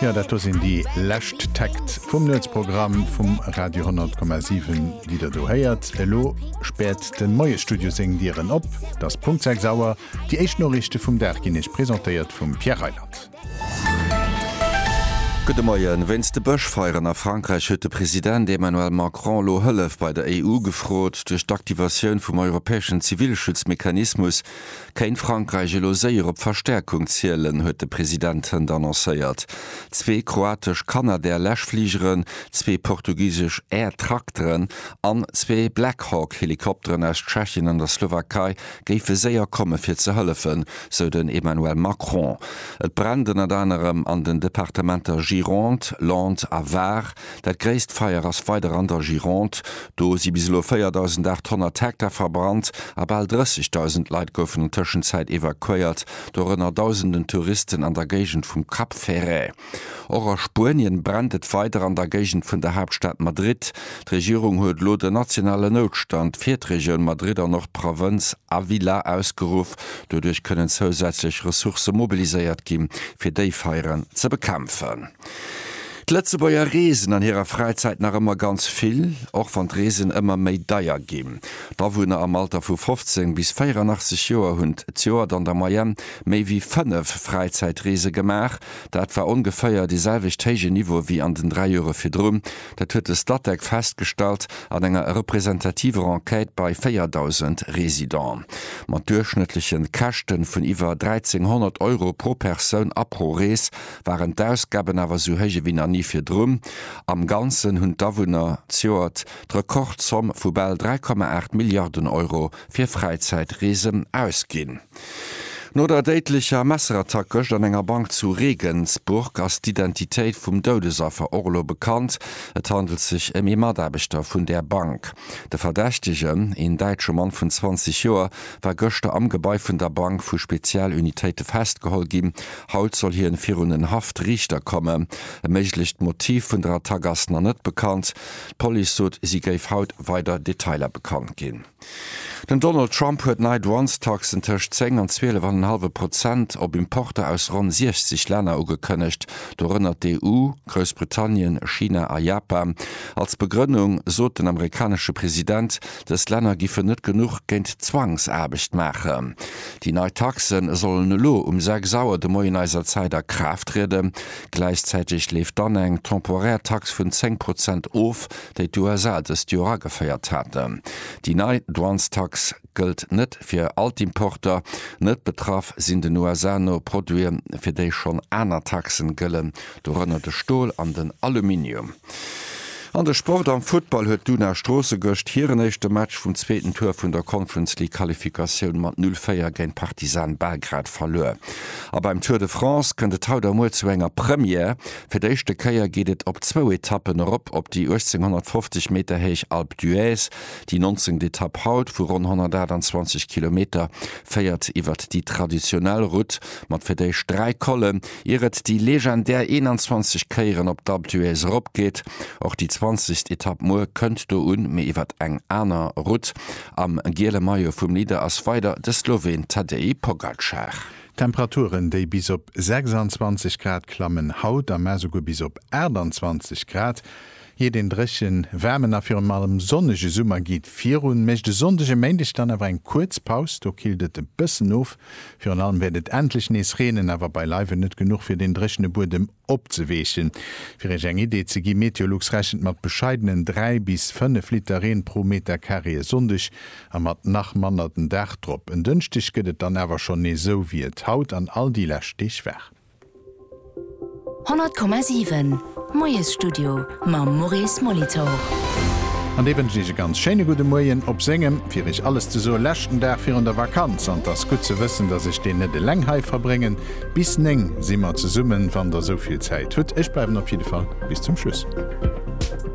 Jo, dat do sinn déi lescht Takt vum Nuetsprogramm vum Radio 10,7, déi der do héiert. Elo späert de Moiesstudio seng Dieren op. Et ass Punkt 6 Auer. Déi éischt Noriichte vum Dag ginn Iech presentéiert vum Pierre Reyland. Gudde Moien. Wéinst de Bëschfeieren a Frankräich huet de President Emmanuel Macron elo Hëllef bei der EU gefrot. Duerch d'Aktivatioun vum europäeschen Zivilschutzmechanismus Kéint Frankräich elo séier op Verstärkung zielen, huet de President hënt annoncéiert. Zwee kroatesch Canadair Läschfligeren, zwee portugisesch Air Trakteren an zwee Black Hawk Helikopteren aus Tschechien an der Slowakei géife séier komme fir ze hëllefen, sou den Emmanuel Macron. Et brennt ënnert anerem an den Departementer Gironde, Landes a Var. Dat gréisst Feier ass weider an der Gironde. Do si bis elo 4.800 Hektar verbrannt a bal 30.000 Leit goufen an Tëschenzäit evakuéiert, dorënner dausenden Touristen an der Géigend vum Cap Ferret. Och a Spuenien brennt et weider an der Géigend vun der Haaptstad Madrid. D'Regierung huet elo den nationalen Noutstand fir d'Regioun Madrid an och d'Provënz Ávila ausgeruff. Doduerch kënnen zousätzlech Ressourcë mobiliséiert gi fir déi Feieren ze bekämpfen. D'Lëtzebuerger reesen an hirer Fräizäit nach ëmmer ganz vill, och wann d'Reesen ëmmer méi deier ginn. D'Awunner am Alter vu 15 bis 84 Joer hunn d'Joert an der Moyenne méi wéi fënnef Fräizäitreese gemaach. Dat war ongeféier dee selwecht héije Niveau wéi an den dräi Jore virdrun. Dat huet de Statec festgestallt an enger representativer Enquête bei 4.000 Residenten. Mat duerchschnëttleche Käschte vun iwwer 1.300 Euro pro Persoun a pro Rees waren d'Ausgaben awer sou héich ewéi nach ni virdrun. Am Ganzen hunn d'Awunner d'Joert d'Rekordzomm vu bal 3,8 Milliarden Euro fir Fräizäitreesen ausginn. No der déidlecher Messerattack gëscht an enger Bank zu Regensburg ass d'Identitéit vum Doudesaffer och elo bekannt. Et handelt sech ëm ee Mataarbechter vun där Bank. De Verdächtegen, een däitsche Mann vun 20 Joer, war gëschter am Gebai vun der Bank vu Spezialunitéite festgeholl ginn Haut soll hien virun en Haft-Riichter kommen. E méiglecht Motiv vun der Attack ass nach net bekannt. D'Police sot, si géif haut weider Detailer bekannt ginn. Den Donald Trump huet nei Douanestaxen tëscht 10 an 12 an en hallwe Prozent op Importer aus ronn 60 Länner ugekënnegt, dorënner d'EU, Groussbritannien, China a Japan. Als Begrënnung sot den amerikanesche President, Dës Länner giffen net genuch géint d'Zwangsaarbecht maachen. Déi nei Taxe sollen elo um 6 Auer de Moien eiser Zäit a Kraaft trieden. Gläichzäiteg leeft dann eng temporär Tax vun 10 Prozent of, déi d'USA dëst Joer ageféiert haten. Déi nei Douanestax gëllt net fir all d'Importer. Net betraff sinn den USA no Produite fir déi schonn aner Taxen gëllen, Dorënner de Stol an den Aluminium. An de Sport, Am Futtball huet d'Una Stroossen gëscht hiren éischte Match vum zweeten Tour vun der Conference League Qualifikatioun mat 0, 4 géint Partizan Belgrad verluer. A beim Tour de France kënnt et haut a muer zu enger Première, Fir d'éischte Kéier geet et op zwou Etappen erop op déi 1850 Meter héich Alpe d'Huez. Déi 19. Etapp haut vu ronn 128 Kilometer féiert iwwert déi traditionell Route mat fir d'éischt dräi Collen. ier et déi legendär 21 Kéieren op d'Alpe d'Huez erop geet. Och déi zwanzegst Etapp muer kënnt do un, mee iwwert eng aner Route. Am giele Maillot vum Leader ass weider de Sloween Tadej Pogacar. D'Temperaturen, déi bis op 26 Grad klammen, haut am Mat esouguer bis op 28 Grad. Iert een dréchen, waarmen a virun allem sonnege Summer geet virun, mécht e Sonndeg e Méindeg dann awer eng kuerz Paus. Do killt et e bëssen of. Virun allem wäert et endlech nees reenen, awer beileiwen net genuch fir deen dréchene Buedem opzeweechen. Fir iech eng Idee ze gi, Meteolux rechent mat bescheidenen 3 bis 5 Liter Reen pro Meter Carré e Sonndeg a mat nach manner den Dag drop. En Dënschdeg gëtt et dann awer schonn nees esou wéi et haut an all déi lescht Deeg war. 100,7, Moiesstudio mam Maurice Molitor. An dee wënscht Iech e ganz schéine gudde Moien op sengem, fir Iech alles ze soen, leschten Dag virun der Vakanz. An 't ass gutt ze wëssen, dass ech deen net eleng hei verbréngen. Bis 9 si mer zesummen, wann Der esou vill Zäit hutt. Ech bleiwen op jidde Fall bis zum Schluss.